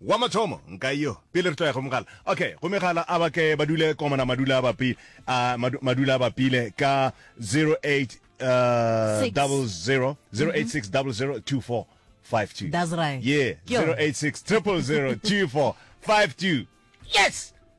Wa mathomo, nka yo, pele re tloya go mogala. Okay, go megala a ba ke ba dule komana madula a bapi, a madu, madula a bapile ka 08 uh, Six. double zero, 086 double zero, 2452. That's right. Yeah, Ke yona. 086 triple zero, 2452. Yes!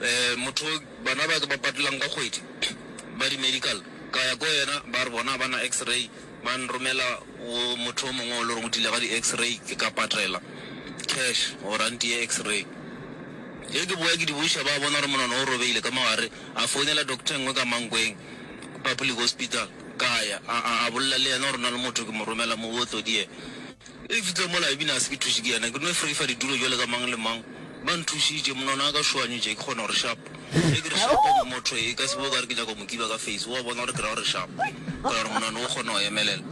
Eh, motho bana ba ke ba patelang ka kgwedi ba di-medical, ka ya ko yena, ba re bona ba na x-ray, ba nromela go motho o mongwe o le reng o dile ka di-x-ray, ke ka patela cash gore a ntiye x-ray. Ge ke boya ke di buša, ba bona gore monono o robegile ka mo gare, a founela doctor e nngwe ka Mankweng Public Hospital, ka ya, a, a, a bolela le yena gore na le motho ke mo romela mo bootlodi yena. Ge ke fitlile mola, Ibini a se ke thuše ke yena, ke no freifa ditulo bjalo ka mang le mang. Ba nthušitše, monwana a ka šoanyo tše, ke kgona gore shap. Ge ke re shap, motho e ka se be o ka re ke nyaka go mo kiba ka face, o a bona gore ke ra gore shap. Ka gore monwana o kgona go emelela,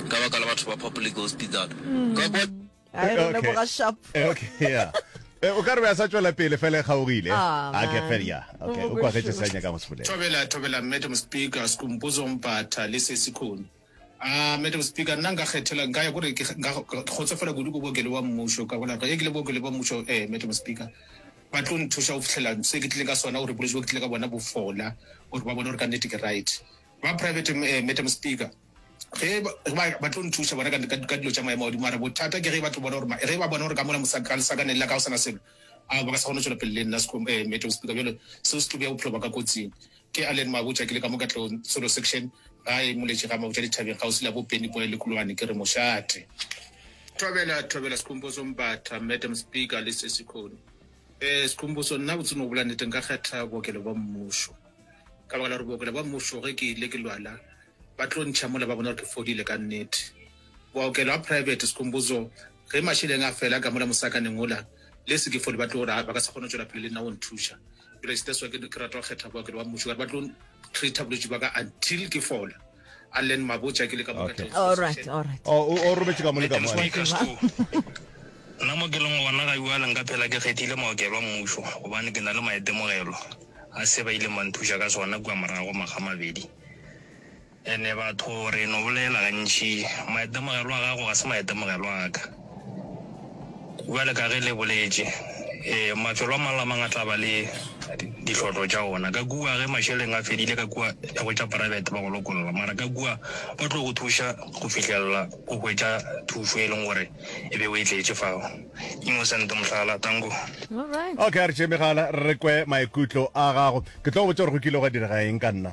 ka baka la batho ba public hospital. Ka kwa. A e re leboga shap. Eh, okay, yeah. Eh, o ka re be a sa tšwela pele fela e kgaogile Ah, a ke man. fela ya O okay o mo kwagetse bošula. sa nyaka go se bolela Thobela, Thobela, Madam Speaker, Skumpuzo Mpata le Sesi Khune. Ah, Madam Speaker, nna nka kgethela, nka ya gore ke nka kgotsofala kudu ko bookelo wa mmušo, ka bona ge ke le bookelo ba mmušo, eh, Madam Speaker, ba tlo nthuša go fitlhela se ke tlileng ka sona, gore bolwetši bo ke tlile ka bona bo fola, gore ba bone gore ka nnete ke right. Ba private, eh, Madam Speaker, ge ba, ge ba- ba tlo nthuša bona ka, ka, ka dilo tša maemo a godimo, mara bothata ke ge ba tlo bona gore, ma- ge ba bona gore ka mola mosa- ka lesakaneng la ka go sana selo, a ba ka se kgone go tšwela pele le nna sekom- eh, Madam Speaker, bjale seo se tlo bea bophelo ba ka kotsing. Ke Allen Mabotja, ke le ka mo Katlehong Solo Section, gae Moletši ga Mabotja Dithabeng kgauswi le ya bo Penny Boy le Kulwane. Ke re mošate. Thobela, Thobela Skhumbuzo Mbatha, Madam Speaker le Sesi Khoni. Eh, Skhumbuzo, nna botsing go bolela nnete nka kgetha bookelo bwa mmušo. Ka baka la gore bookelo bwa mmušo ge ke ile ke lwala, ba tlo ntšha mola ba bona gore ke fodile ka nnete. Bookelo a private, Skhumbuzo, ge mašeleng a fela ka mola mosakaneng wola, le se ke fole ba tlo gore ba ka se kgone go tšwela pele le nna go nthuša. Kriste swa ke ke rata go kgetha bookelo ba mmušo ka ba tlo treata bolwetse ba ka until ke fola a len mabotsa ke le ka moka all right all right oh, o o robetse ka mo le ka mo nna mo ke leng gona ga bua leng ka phela ke kgethile maokelo a mmušo gobane ke na le maitemogelo a se ba ile manthuša ka sona kua morago maga mabedi Ene batho re no bolela gantši, maitemogelo a gago ga se maitemogelo a ka. Bjale ka ge le boletše, ee, mafelo a mang le a mang a tla ba le dihlotlo tša ona. Ka kua ge mašeleng a fedile, ka kua ya go tša private ba go lokolla, mara ka kua ba tlo go thuša go fihlelela o hwetša thušo e leng gore e be o e tletše fao. Innocent, mohlala. Tango. Alright. Okay, a re tšee megala re kwe maikutlo a gago. Ke tlo go botša gore go kile gwa direga eng ka nna.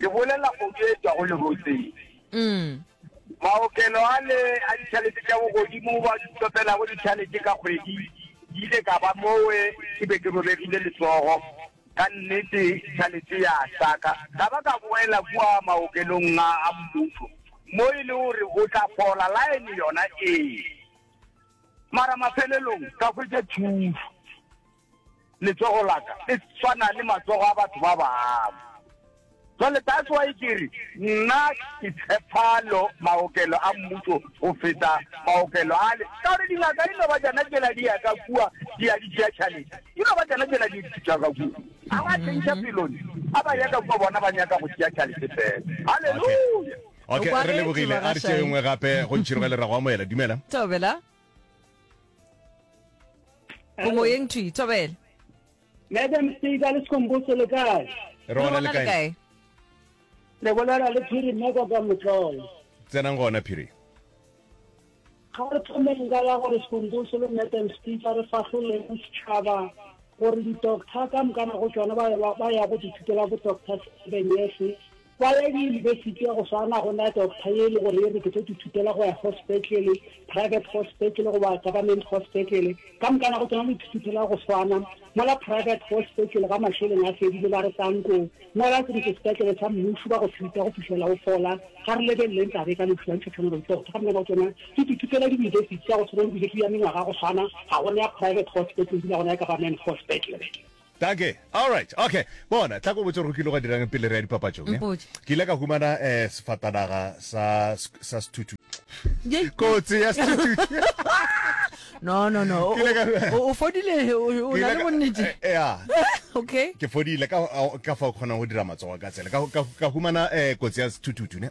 Ke bolela kgodu e tswago lerotseng. Mm. Maokelo a le a ditšhalete tša bogodimo ba tlopelago ditšhalete ka kgwedi ke ile ka ba mowe ke be ke robegile letsogo ka nnete tšhalete ya saka ka ba ka boela kua maokelong a a mmušo mo e le gore o tla fola laene yona ee mara mafelelong ka hwetša thuso Letsogo la ka le swana le matsogo a batho ba bangwe. Jwale that's why ke re nna ke tshepa lo maokelo a mmušo go feta maokelo ale, ka gore dingaka di no ba tšona tšela di ya ka kua di ya di tšea tšhalete, di no ba tšona tšela di tšea ka kua. A ba tšhentšha pelone, a ba ya ka kua bona ba nyaka go tšea tšhalete fela. Haleluya! Okay, re lebogile. A re tšee nngwe gape go ntšhiroge lerago amoela. Dumela. Thobela. o moyeng twi thobela madam speaker le sekomboso le kae re Re gona le bona kae le bolela le phiri mmeka ka motlolo tsenang gona phiri ga re thomeng ka ya gore sekomboso le madam speaker re fahloleng setšhaba gore di-doctor ka mokana go tsone ba ya- ba ya go dithutela bo-doctor sebenese Kwa ya diyunibesithi ya go swana go na doctor ye e le gore e re ke tlo ithutela go ya go sepetlele, private go sepetlele goba government go sepetlele. Ka moka nako tsona lo ithutela go swana. Mola private go sepetlele ga mašeleng a fedile ba re tanko mola ke re ke sepetlele sa mmušo ba go treata go fihlela o fola. Ga re lebeleleng taba e ka lehu la ntšha tshwana le doctor. Ka moka nako tsona ke di ithutela diyunibesithi ya go swana le bile ke ya mengwaga go swana ga gona ya private go sepetlele ebile ga gona ya government go sepetlele. Dankie. Alright. Okay. Bona, tla ko botse gore go kile gwa dirang pele re ya dipapatšong. eh? Mpotše. Ke ile ka humana eh, sefatanaga sa, sa sethutu. Yei. Kotsi ya sethutu. no no no o- Ke ile ka- o- o fodile o o Ke na ile le ka- bonnete eh, yeah. okay ke fodile ka ka fa o kgonang go dira matsogo ka tsela ka ka- ka humana um kotsi ya sethututu ne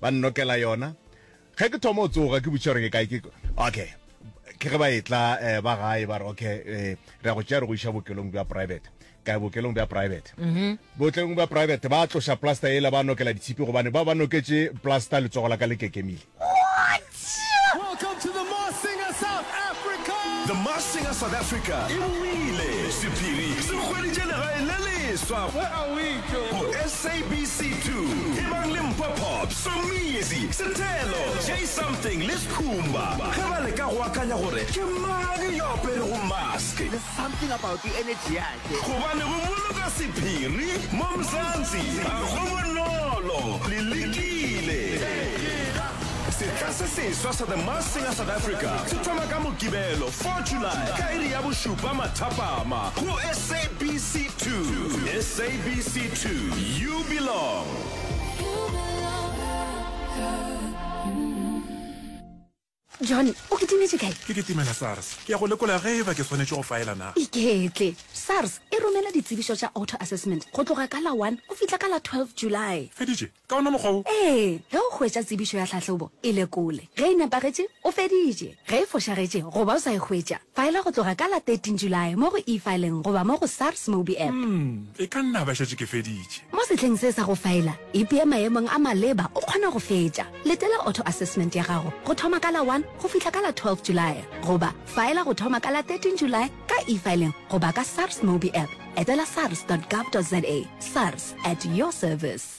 ba nnokela yona ge ke thoma o tsoga ke butše gore ke kae ke okay ke ge ba etla eh, ba gae ba re okay eh, re ya go tšea re go iša bookelong bja private ka bookelong bja private mhm. bookelong bja private ba tloša plaster ela ba nokela ditshipi gobane ba ba noketše plaster letsogo la ka le kekemile Welcome to the Masked Singer South Africa. The Masked Singer South Africa e boile. Sephiri se hweditše legae le leswa. Where are we, Joe? Go SABC 2. Ebang le Mpho Pop, Somizi, Sethelo, Jay Something le Skhumba ge ba leka go akanya gore ke mang yo aperego mask. There's something about you, energy ya Gobane go boloka sephiri mo Mzansi ga go bonolo, le lekile. Setla se seswa sa The Masked Singer South Africa se thoma ka Mokibelo 4 July ka iri ya bošupa mathapama go SABC 2. SABC 2, you belong. John, o kitimetše kae? Ke kitimela SARS. Ke ya go lekola ge eba ke swanetše go faela na. Iketle. SARS e romela ditsebišo tša auto assessment go tloga ka la one go fihla ka la twelve July. Feditše? Ka ona mokgwa wo? Ee, ge o hwetša tsebišo ya tlhahlobo, e lekole. Ge e nepagetše, o feditše. Ge e fošagetše goba o sa e hwetša, Faela go tloga ka la 13 Julae mo go e-fileng goba mo go SARS Mobi App. Umm, e ka nna ba šetše ke feditše. Mo sehleng se sa go faela, ipee maemong a maleba o kgona go fetša. Letela auto-assessment ya gago go thoma ka la 1 go fihla ka la 12 Julae goba faela go thoma ka la 13 Julae ka e-fileng goba ka SARS Mobi App. Etela sars dot gov dot za. SARS, at your service.